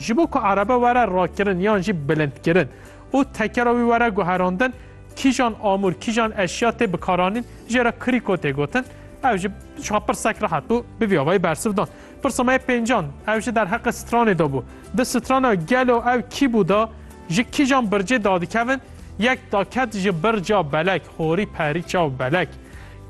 Ji bo ku erebe were rakirin yan jî bilindkirin û tekera wî were guherandin, kîjan amûr, kîjan eşya tê bikaranîn jê re krîko tê gotin. Ew ji şixa pirsek rehet bû, bi vî avayî bersiv dan. Pirsa me yê pêncan, ew ji derheqê stranê de bû. Di strana gelo ew kî bû de ji kîjan bircê dadikevin, yek daket ji birca belek, Porî perî çaw belek.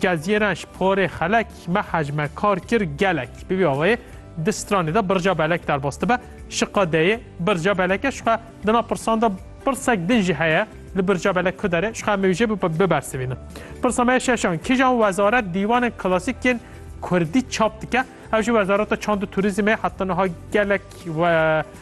Kezyeran ji porê xelek me hecme kar kir gelek. Bi vî awayê di stranê de birca belek derbas dibe. Şiqa deyê birca belek e şixa di nav pirsan de pirsek din jî heye li birca belek ku dere şixa em ê wî jê bibersivînin. Pirsa me şeşan kîjan wezaret dîwanên klasîk yên Kurdî çap dike? Ev jî wezareta çand û turîzmê heta niha gelek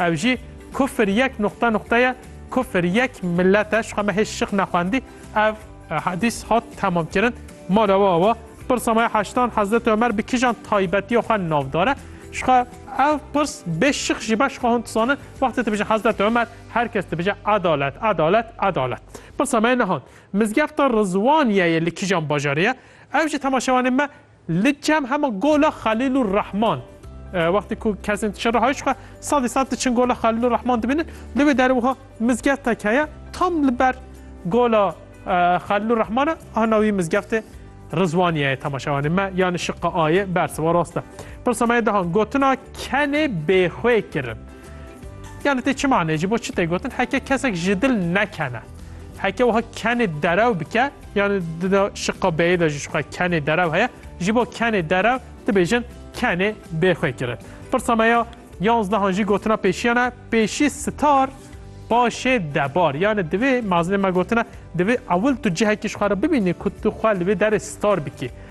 Ev jî kufr yek nuqta nuqta ye, kufr yek milet e, şixwe me hê şix nexwendî. Ev hadîs hat temamkirin, mala we awa, pirsa me ya heştan Hezreti Omer bi kijan taybetiya xwe navdar e? Şixwe ev pirs bê şix jî be, şixwe hûn dizanin wextê dibêjin Hezreti Omer her kes dibêje edalet, edalet, edalet. Pirsa me ya nihan, Mizgefta Rizwaniyeyê li kijan bajarê ye? Ew jî temaşevanên me Li çem hema gola Xelîlûr Rehman. Wextê ku kesên ti şerê hayiş xwe sedî sed diçin gola Xelîlûr Rehman dibînin. Li wê derê wiha mizgeftek heye tam li ber gola Xelîlûr Rehman e. Ana wî mizgeftê Rizwaniye ye temaşe wanê me yanê şiqa A yê bersiva rast e. Pirsa me yê dihan gotina kenê bêxwê kirin. Yani tê çi manê ji bo çi tê gotin heke kesek ji dil nekene. Heke wiha kenê derew bike yani dida şiqa beyê de ji şiqa kenê derew heye ji bo kenê derew dibêjin kenê bêxwe kirin. Pirsa me ya yanzdehan jî gotina pêşiyana pêşî star paşê debar yani divê mazinê me gotina divê ewil tu cihekî ji xwe re bibînî ku tu xwe li vê derê star bikî.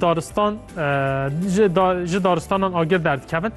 Daristan ji daristanan agir derdikevin.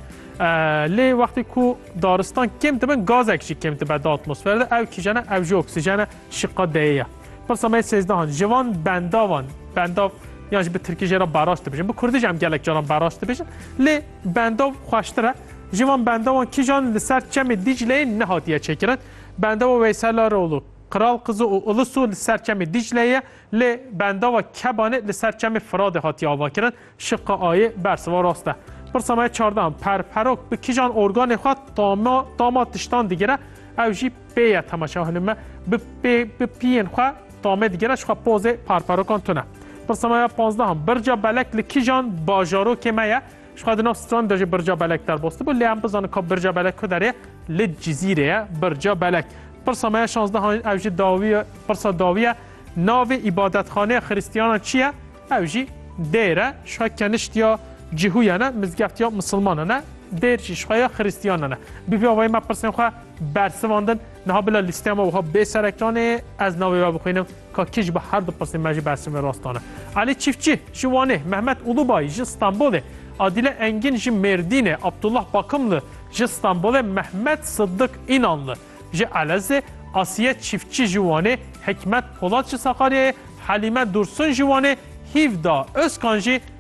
Lê wextê ku daristan kêm dibin gazek jî kêm dibe di atmosfere de ew kîjene ew jî oksîjene şiqa deyê ye. Pirsa me sêzdehan ji van bendavan bendav yan ji bi tirkî jê re baraş dibêjin. Bi kurdî jî em gelek caran baraş dibêjin. Lê bendav xweştir e. Ji van bendavan kîjan li ser çemê Dîcleyê nehatiye çêkirin. Bendawa Weysel Aroğlu, Kral Kızı û Ilısu li ser çemê Dîcleyê ye. Lê bendava Kebanê li ser çemê Firadê hatiye avakirin, şiqa ayê bersiva rast e. Pirsa me ya çardeh an, Perperok bi kijan organê xwe tama tama tiştan digire, ew jî pê ye temaşe ew hilin me bi pê bi piyên xwe tamê digire jixwe pozê perperokan tune. Pirsa me ya panzdeh an, Birca Belek li kijan bajarokê me ye, Ji xwe di nav stran de jî Birca Belek derbastibû lê em bizanin ka Birca Belek ku derê li Cizîrê ye. Birca Belek. Pirsa me ya şazdeh an ev jî dawî ye, pirsa dawî ye. Navê îbadetxaneya Xiristiyanan çi ye? Ew jî dêr e. Ji xwe kenişt ya Cihûyan e, mizgeft ya misilmanan e. Dêr jî ji xwe ya Xiristiyanan e. Bi vî awayî me pirsên xwe bersivandin. Niha bila lîsteya me wiha bê serekan ê, ez navê we bixwînim, ka kî ji bo her du pirsên me jî bersivê rastan e. Elî Çîftçî ji Wanê, Mehmet Ulubay ji Stenbolê, Adîle Engîn ji Mêrdînê, Abdullah Bakimli ji Stenbolê, Mehmet Siddik Înanli ji Elezê, Asiye Çîftçî ji Wanê, Hikmet Polat ji Sakaryayê, Helîme Dursun ji Wanê, Hîvda Ozkan jî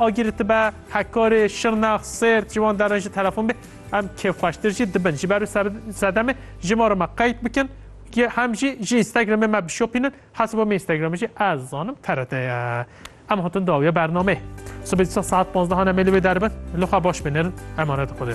Agirî ti be Hekarê, Şirnex, Sêrt ji wan derin jî telefon bê em kêfxweştir jî dibin. Ji ber û sedemê ji ma re me qeyd bikin ki hem jî ji Instagramê me bişopînin. Hesaba me Instagramê jî ez zanim TRT ye. Em hatin dawiya bernameyê. Sibê dîsa saet 15 hane mêlê wê derbin. Li xwe baş binirin. Emanet Xwedê.